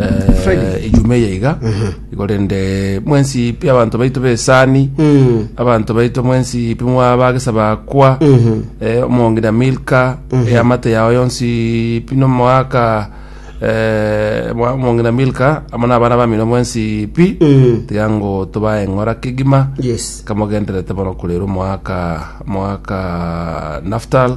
eh, ejuma eye iga igo rende mwensi pi abanto baito besani abanto baito mwensi pi mwabagesa bakwa eh, omongina milka eamate yao yonsi pi nomoaka eh, mwa- omongina milka amo nabana bamino mwensi pi tiga ngo tobae ng'ora kegima yes kamogenderete bono kurera omwaka omwaka naftal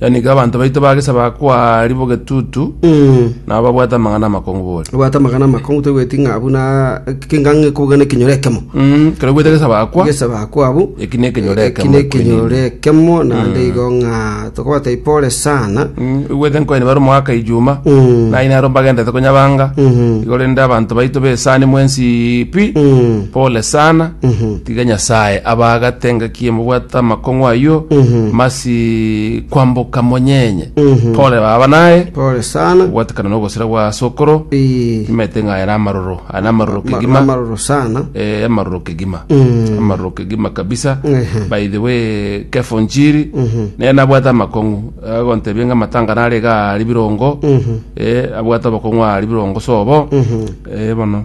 Yaani iga abanto baito ba gesabaga kwaaria bogetutu, Mm. nabo babwate amang'ana amakongu bore. Obwate amagana amakongu toigweti ng'a buna kinga ng'ekobuga nekinyoro ekemo. Mm, kero bwete gesabaga kwa, Gesabaga kwabo. eki ne ekenyoro Eki ekemo. ne ekinyoro ekemo naende igo ng'a tokobatebia pole sana. Mm, igwete nkoini bare omogaka ijuma, Mm. naye nero mbagendete konyabanga, Mhm. igo rende abanto baito besani mwensi pi, Mm. pole sana. Mhm. Tiga Nyasae abaagate engaki emobwate amakong'u ayio, masi kwamboka monyenye. Pole baba naye, Pole sana. gobwatekana nogosira gwa asokoro, Eh, timaete ng'a ere amaroro, aya namaroro ma- kegima. Amaroro sana. Eh, amaroro kegima amaroro kegima kabisa Mhm. by the way kefo njiri naye nabwate amakong'u agontebia ng'a matanga nare iga ari birongo eh, abwate abakong'u ari birongo sobo eh, bono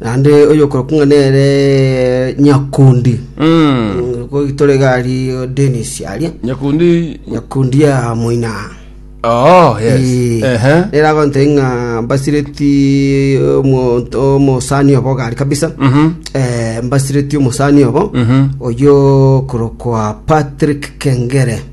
Naende oyokorokwa ng'a nere Nyakundi, goitore iga ari Denis aria, nyakundi Nyakundi ya moina aa. oh yes Ee, ehe nere agontera ng'a mbasireti omonto omosani obo gari kabisa Mhm. Eh, mbasireti omosani obo Mhm. oyo okorokwa Patrick Kengere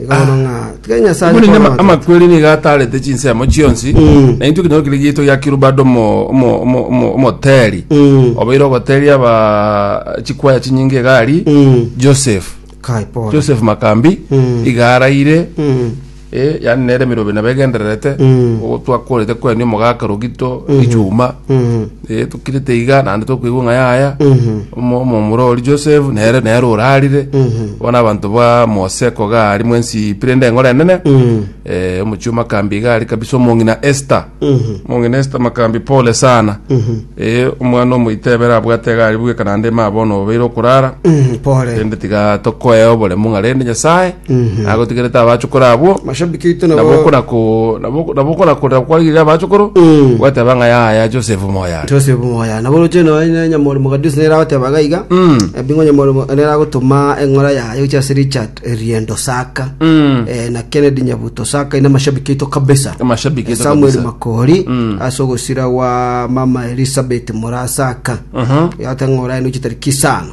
Iga bono ng'a tiga Nyasaye Omonene ama- akorogota. amakweri nigo atarete chinsemo chionsi Mm. na intwe kinyoro kire gietwa gia kirubado omo- omo- omo- omo- omoteri Mm. obeire ogoteri aba chikwaya chinyinge egari Mm. joseph Kai pole. joseph makambi Mm. iga araire Mm. eh, yani nere emerobe nabo egendererete Mm. ogo twakorete kweni omogaka rogito ichuma Mm. Eh, tokirete iga naende tokoigwa ng'a yaya omo- omomura ori joseph nere nere orarire bono abanto ba mose koga ari mwensi pirende engoro enene Eh, omochio makambi iga ari kabisa omong'ina esther omong'ina esther makambi pole sana Eh, omwana omoito ebere abwate iga ari bweka naende ema bono obeire okorara pore rende tiga tokoea oboremu ng'a rende nyasae agotigerete abachokoro abwo Mashabiki aito nabo nabo okona ko nabo nabo okona ko nabo kwarigereria abachokoro Mm. gwateba ng'a yaya Joseph moya Joseph Moya nabo roche noe ne nyamori mogadisi nera goteba iga iga Mm. ebingo nyamori mo- nera gotoma eng'ora yaye gochia ase Richard Riendo Saka Mm. eh, na Kennedy Nyabuto Saka ina mashabiki aito kabisa Amashabiki aito Samuel kabisa. Makori Mm. ase ogosira gwa mama Elizabeth Mora Saka Mhm. yate ng'ora eno gochia tariki isano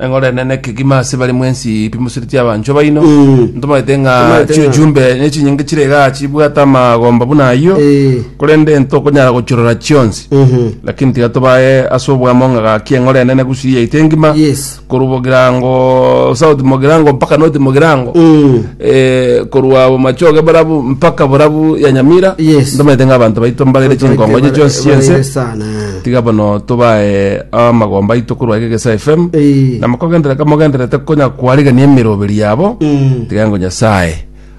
Eng'orene nekegima ase bare mwensi pimusereti abanchwa baino Eh. ntomanyete ng'a Ntomanyete ng'a- chiujumbe nechinyinge chire iga chibwate amagomba buna ayio Eh. korende ntokonyara gochirora chionsi Mhm. lakini tiga tobae ase obwamo ng'a gaki eng'orene negusiri yaito engima Yes. korwa bogirango south mogirango mpaka north mogirango Mm. eh, korwa bomachoge borabu mpaka borabu ya nyamira Yes. ntomanyete ng'a abanto baito mbarere Baito chinkongo baito chionsi bare- chionse barere sana, eh. Tiga bono tobae amagomba aito korwa Egegesa FM. Eh. Na mokogenderera kamogendererete konya kwarigania emeroberi yabo. Mm. Tiga ngo Nyasaye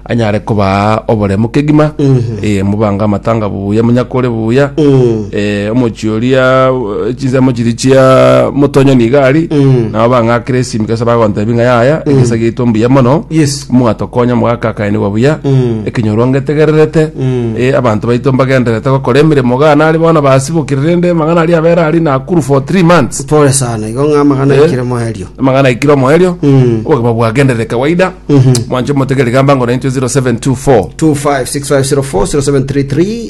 anyare kobaa oboremu kegima. Mhm. Eh, mobange amatanga buya, monyakore buya. Mm. Eh, omochie oria eh, chinsemo chiri chia motonyoni iga ari. Mm. Nabo bang'akire esimike ase bagontebi ng'a yaya, egesa giaito mbuya mono. Yes. Mwatokonya mogakakanigwa buya, ekenyorwa ngetegererete, eh, abanto baito mbagendererete gokora emeremo iga nare bono basibokire, rende amang'ana aria abere aria Nakuru for three months. Pole sana, igo ng'a amang'ana Eh. aikire moerio. amang'ana aikire omoerio Mm. obogima bwagenderere kawaida mwanche motegere gamba ngo naintwe 0724 256504 0733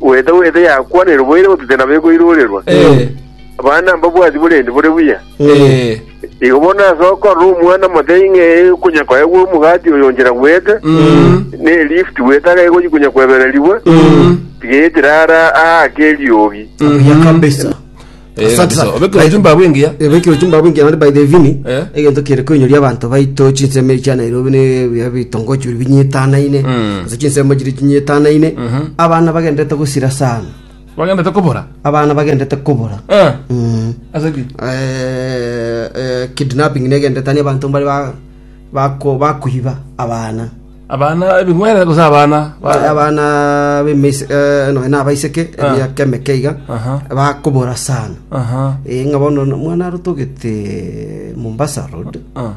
Goeta goeta yakwanerwe boira gototera nabo ekoirorerwa. Ee. Abana mbabwati borendi bore buya. Ee. Igo bono ase okorora omwana motebi ng'a ee konya koegwa omogati oyo onchera goeta, Mm. ne lift goeta iga egochi konya kwebererigwa, Mm. tiga etira ara aake eriogi. Buya kabisa. Eh, Asante sana. obe kiro chumba abu engiya. ebekiro chimbabu engiya naende by the vini Eh. egento kere koinyoria abanto baito chinsemo echi ya nairobi ne ebiya bitongochi biri binyetanaine Mm. ase chinsemo chiri chinyetanaine abana bagendete gosira sana Bagenda tokobora. abana bagendete kobora Eh. Mm. Ase ki? Eh, eh, kidnapping negendetani abanto mbari ba- bako- bakoiba abana Abana ebing'were gose abana ba- Ba- abana b'emeise- eh, nonya na abaiseke Ah. emiaka emeke iga Aha. bakobora sana Aha. Eh, ng'a bono no- mwana arotogete mombasa road Ah.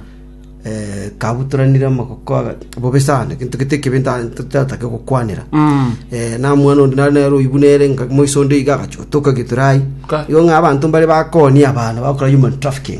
eh, kabutoranire amagoko aga- bobe sana gento gete ekebe nta- totatake gokwanera Mm. Eh, na mwana onde nare nero oibu nere nga moiso onde iga agachotoka giturai Ka. igo ng'a abanto mbare bakonia abana bakora human trafficking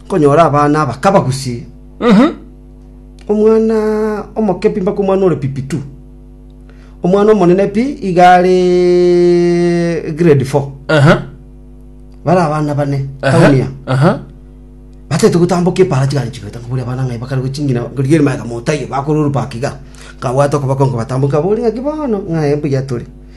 Konyora abana aba kabagusie omwana omoke pi mpaka omwana ore pipi tu. Omwana omonene pi iga are grade four. Aha. Bare abana bane Aha. tauni ya. Aha. batete gotamboka epara chigari chigata nkaburi abana ng'ai bakare gochingina ngorigia erima yaga motayo bakorwa orubaki iga nkabwata okoboko nkobatamboka nkabori ng'aki bono ng'aye mbuya tore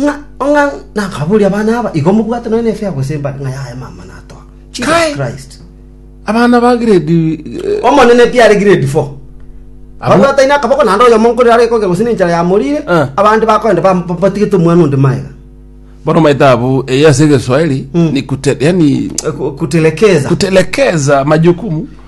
Ng'a ong'a nakabori abana aba, igo mobwate nonya nefe ya gosembana, ng'a yaye mama natoa. Jesus Kai. Christ. Abana ba grade eh, Omonene pi are grade 4. Abo- Babwataine akaboko naende oyomo nkorire are koge gose nenchara yamorire, Eh. abande bakoenda bam- ba- batigete omwana onde maega. bono maete abu eye ase egeswahili ni kute, yani Ku- Kutelekeza. kutelekeza majukumu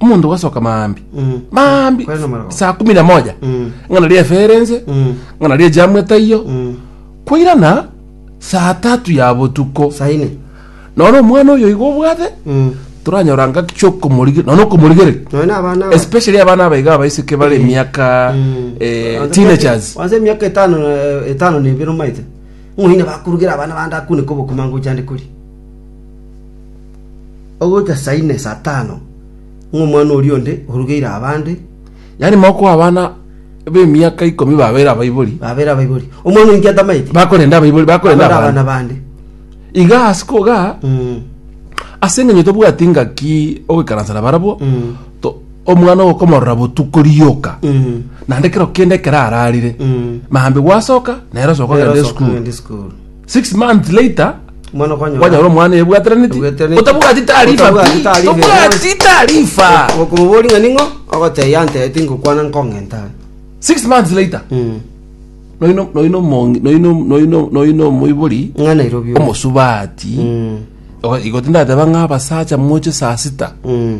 omonto ogasoka maambi Mm. maambi Kwena mara- saa kumi na moja Mm. ng'ana ria eferense Mm. ng'ana ria jamu etaiyo Mm. kwairana saa tatu ya botuko saine none omwana oyo igo obwate Mm. toranyora ngaki kiokomorigera none okomorigere noe na abana aba- especially abana abaiga abaiseke bare Mm. emiaka Mm. eh, Wanze teenagers miaka- wanze miaka etano eh, etano na ebere omaite ng'oine bakurugera abana bande akune kobokuma ngochande kori ogoika saa ine, saa tano, ng'a omwana oria onde orugeire abande, Yaani mokoa abana b'emiaka ikomi babeire abaibori, babeire abaibori. Omwana oinkia tamaeti, bakorenda abaibori, bakorenda abande abande. abana bande. Iga ase koga Mm. ase eng'enyo tobwati ngaki ogoikaransa na barabwo Mm. to- omwana ogo komorora botuko rioka Mm. naende kero kende ekero ararire Mm. maambigwa asoka nere osoka Nere ogenda osoka esukuru ogenda esukuru. Six months later, Omwana kwanyora. kwanyora omwana ebwateraneti. Ebwateraneti. Otabwati taarifa. Otabwati taarifa. Tobwati taarifa. Okomobori ng'a ning'o ogotebia yantereti ngokwana nkong'enta. Six months later, Mm. noino noino omongi- noino noino noino omoibori Ng'a Nairobi. oyo. omosubati Mm. Ogo- igo tindateba ng'a abasacha moche saa sita Mm.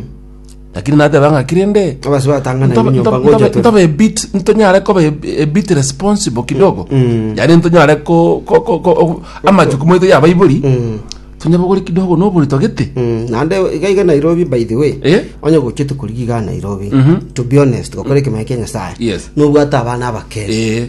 Lakini nateba ng'a ki rende? Abase batang'ana Ntobe- ebinyomba ntobe- ngocha ntobe- tore. ntobe bit- ntonyare koba eb- a bit responsible kidogo mm. yaani ntonyare ko- ko- ko- ko- o- amajukumu aito ya abaibori Mm. tonyabogore kidogo nobori togete Mm, naende iga iga nairobi by the way Eh? onye gochia tokorigi iga nairobi to be honest gokora ekemanya kia nyasaye Yes. nobwate abana abakere Eh.